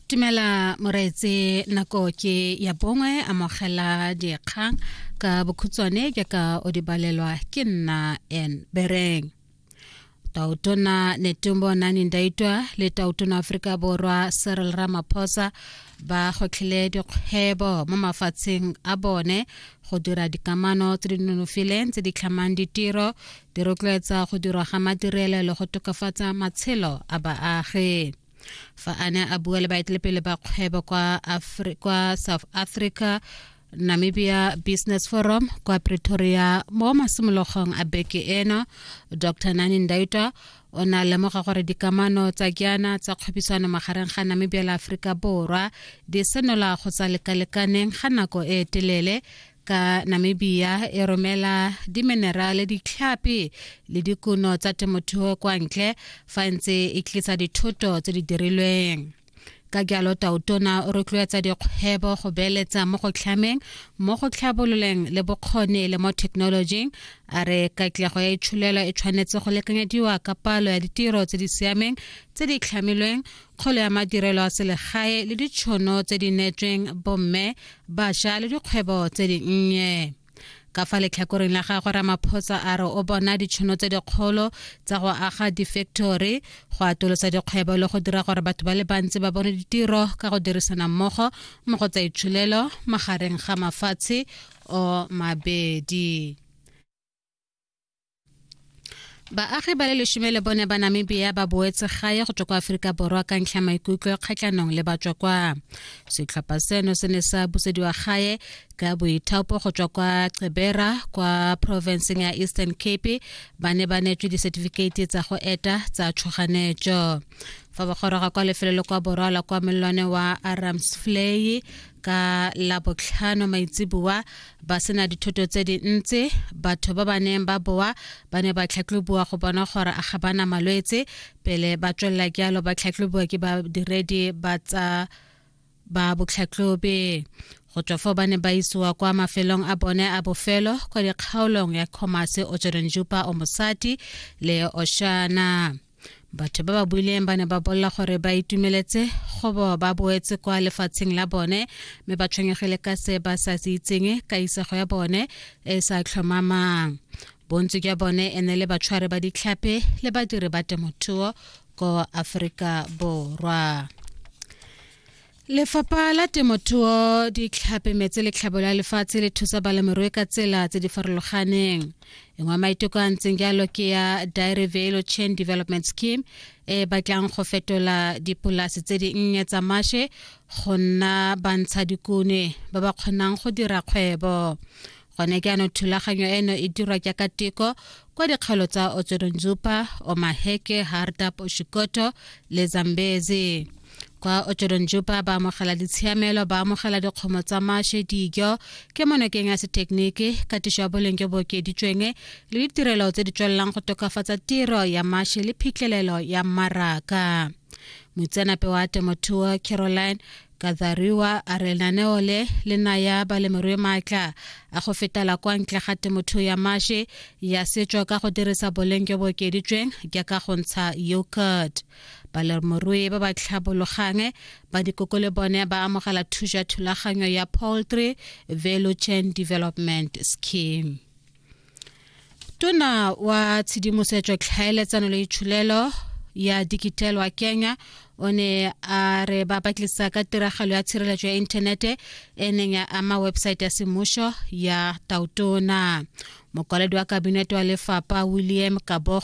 Tumela moreetse nako ke ya bongwe amogela dikgang ka bokhutswane ke ka o di balelwa ke nna en bereng tautona netumbo nani ndaitwa le tautona aforika borwa cyril ramaphosa ba gotlhile dikgwebo mo mafatsheng a bone go dira dikamano tse di nonofileng tse di tlhamang ditiro di rotloetsa go dirwa ga madirelo le go tokafatsa matshelo a baagi fa a ne a bua le baetelepele ba kgwebo kwa, Afri kwa south africa Namibia Business Forum kwa Pretoria mo masimologong a beke eno Dr Nani Ndaitwa o ne a lemoga gore dikamano tsa kiana tsa kgwebisano magareng ga Namibia le Aforika Borwa di senola go tsa lekalekaneng ga nako e telele ka Namibia e romela diminerale ditlhapi le dikuno tsa temothuo kwa ntle fa e ntse e tlisa dithoto tse di dirilweng ka jalo tautona o rotloetsa dikgwebo go beeletsa mo go tlhameng mo go tlhabololeng le bokgoni le mo thekenolojing a re katlego ya itsholelo e tshwanetse go lekanyediwa ka palo ya ditiro tse di siameng tse di tlhamilweng kgolo ya madirelo a selegae le ditšhono tse di neetsweng bomme bašwa le dikgwebo tse dinnye ka fa letlhakoreng la gagwe ramaphosa a re o bona ditšhono tse dikgolo tsa go aga di-factory go atolosa dikgwebo le go dira gore batho ba le bantsi ba bone ditiro ka go dirisana mmogo mo go tsa itsholelo magareng ga mafatshe o mabedi baagi ba le lesome le bone ba namibia ba boetse gae go tswa kwa aforika borwa ka ntlha maikutlo a kgatlhanong le batswa kwa setlhopha seno se ne sa busediwa gae ka boithaopo go tswa kwa cebera kwa provinceng ya eastern cape ba ne ba neetswe disetifikeiti tsa go eta tsa tshoganetso fa ba goroga kwa lefelo le kwa borwa la kwa mellwane wa arams flay ka labotlhano maitseboa ba sena dithoto tse dintsi batho ba ba neng ba boa ba ne ba tlhatlhoboa go bona gore a ga bana malwetse pele ba tswelela jalo ba tlhatlhoboa ke badiredi ba tsa ba botlhatlhobe go tswa fo ba ne ba isiwa kwa mafelong a bone a bofelo kwa dikgaolong ya comase o tsorenjupa o mosadi le oshana batho ba ba buileng ba ne ba bolela gore ba itumeletse gobo ba boetse kwa lefatsheng la bone mme ba tshwenyegile ka se ba sa se itseng ka isego ya bone e e sa tlhomamang bontsi jwa bone e ne le batshware ba ditlhape le badiri ba temothuo ko aforika borwa Lefapha la temothuo di tlhapemetse letlhabo la lefatshe le thusa balemirui ka tsela tse di farologaneng engwe maiteko a ntseng jalo ke ya dairy velo chain development scheme e batlang go fetola dipolase tse di nnye tsa mashe go nna bantsha dikune ba ba kgonang go dira kgwebo gone ke ano thulaganyo eno e dirwa jaaka teko kwa dikgaolo tsa otsodonzupa omaheke hardap oshikoto le zambezi kwa otsodonzupa ba amogela ditshiamelo ba amogela dikgomo tsa mashe dijo ke monokeng ya sethekeniki katiso ya boleng jo bo okeditsweng le ditirelo tse di tswelelang go tokafatsa tiro ya mashe le phitlhelelo ya mmaraka moitseanape wa temothuo caroline Kathariwa a re lenaneo le le naya balemirui maatla a go fetela kwa ntle ga temothuo ya mashe ya setso ka go dirisa boleng jo bo okeditsweng jaaka go ntsha yogurt balemirui ba ba tlhabologang ba dikoko le bone ba amogela thuso ya thulaganyo ya poultry value chain development scheme tona wa tshedimosetso tlhaeletsano le itshulelo ya dikitelwa kenya o ne a re ba batlisa ka tiragalo ya tshireletso ya inthanete e neng ya ama websaete ya semmušo ya tautona mokwaledi wa kabinete wa lefapa william kabogo